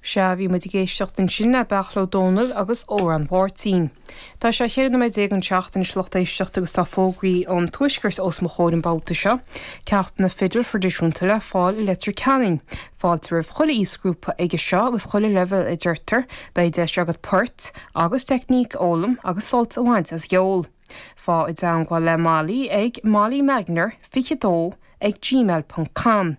Sea, bhí muid ag éisteacht ansin le Beairtle Ó Domhnaill agus Amhrán Mháirtín. Tá sé 14 nóiméad don seacht anois a lucht éisteachta agus tá fógraí ón Tuaisceart os mo chomhair an babhta seo. Ceachtanna fidil thraidisiúnta le fáil i Leitir Ceanainn. Fáilte roimh chuile aoisghrúpa aige seo agus chuile leibhéal a deirtear. Beidh deis agat poirt agus teicníc a fhoghlaim agus sult a bhaint as an gceol. Faigh i dteangmháil le Molly ag molly magner 22 ag gmail ponc com.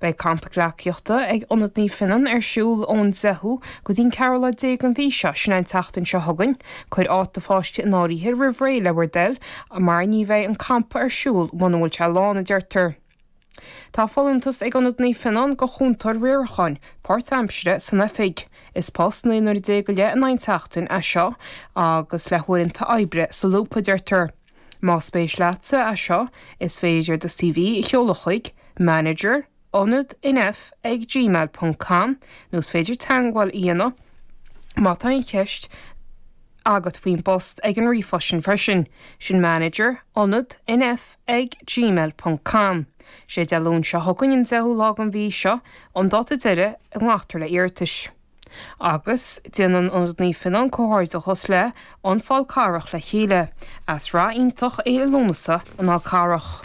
Beidh campa gleacaíochta ag Ionad Naomh Fionnán ar siúl ón 10ú go dtí'n 14ú lá den mhí seo, sin é an tseachtain seo chugainn. Cuir áit do pháiste in áirithe roimh ré le bhur dtoil mar ní bheidh an campa ar siúl muna bhfuil sé lán, a deirtear. Tá folúntas ag Ionad Naomh Fionnán go chúntóir riaracháin, páirtaimsire, san oifig. Is post 19 n-uaire go leith in aghaidh an tseachtain é seo agus le huaireanta oibre solúbtha, deirtear. Más spéis leatsa é seo, is féidir do CV a sheoladh chuig, manager, ionad nf ag gmail ponc com, nó is féidir teagmháil a dhéanamh má tá aon cheist agat faoin bpost ag an ríomhphost freisin, sin manager, ionad nf ag gmail ponc com. Sé Dé Luain seo chugainn an deichiú lá den mhí seo an dáta deiridh a nglactar le hiarratais. Agus déanann Ionad Naomh Fionnán comhghairdeachas le An Fál Carrach le chéile as rath iontach Fhéile Lúnasa an Fhál Carrach.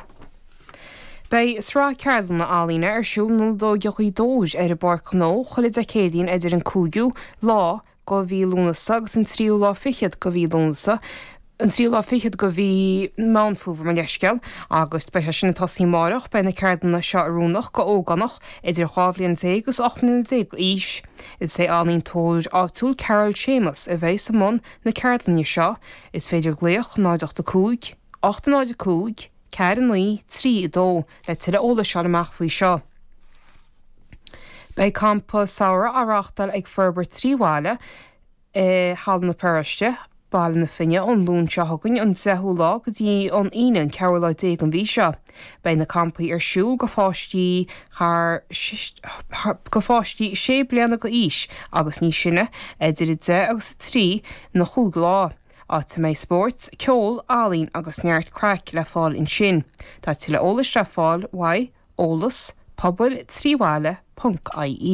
Beidh sraith ceardlanna ealaíne ar siúl in Ionad Óige Ghaoth Dobhair ar an bPáirc Ghnó chuile Dé Céadaoin idir an 5ú lá go mhí Lúnasa agus an 3ú lá fichead go mhí Lúnasa. an tríú lá fichead de mhí Meán Fómhair, mo leithscéal, agus beidh sé sin ag tosaí amárach. Beidh na ceardlanna seo oiriúnach go ógánach idir dhá bhliain déag agus ocht mbliana déag d'aois. Is é an ealaíontóir áitiúil Carol Séamus a bheidh i mbun na ceardlainne seo. Is féidir glaoch 0 8 5 8 0 5 4 9 3 2 le tuilleadh eolais a fháil amach faoi seo. Beidh campa samhraidh á reáchtáil ag Forbairt Trí Bhaile, i Halla na Paróiste, Baile na Finne ón Luan seo chugainn an 10ú lá go dtí an Aoine an 4ú lá déag den mhí seo. Beidh na campaí ar siúl go pháistí thar go pháistí sé bliana go aois agus níos sine idir 10 agus 3 na chúig lá, áit a mbeidh spóirt, ceol, ealaín agus neart craic le fáil ansin. Tá tuilleadh eolais le fáil uaidh, eolas, pobail, trí bhaile, ponc, ie.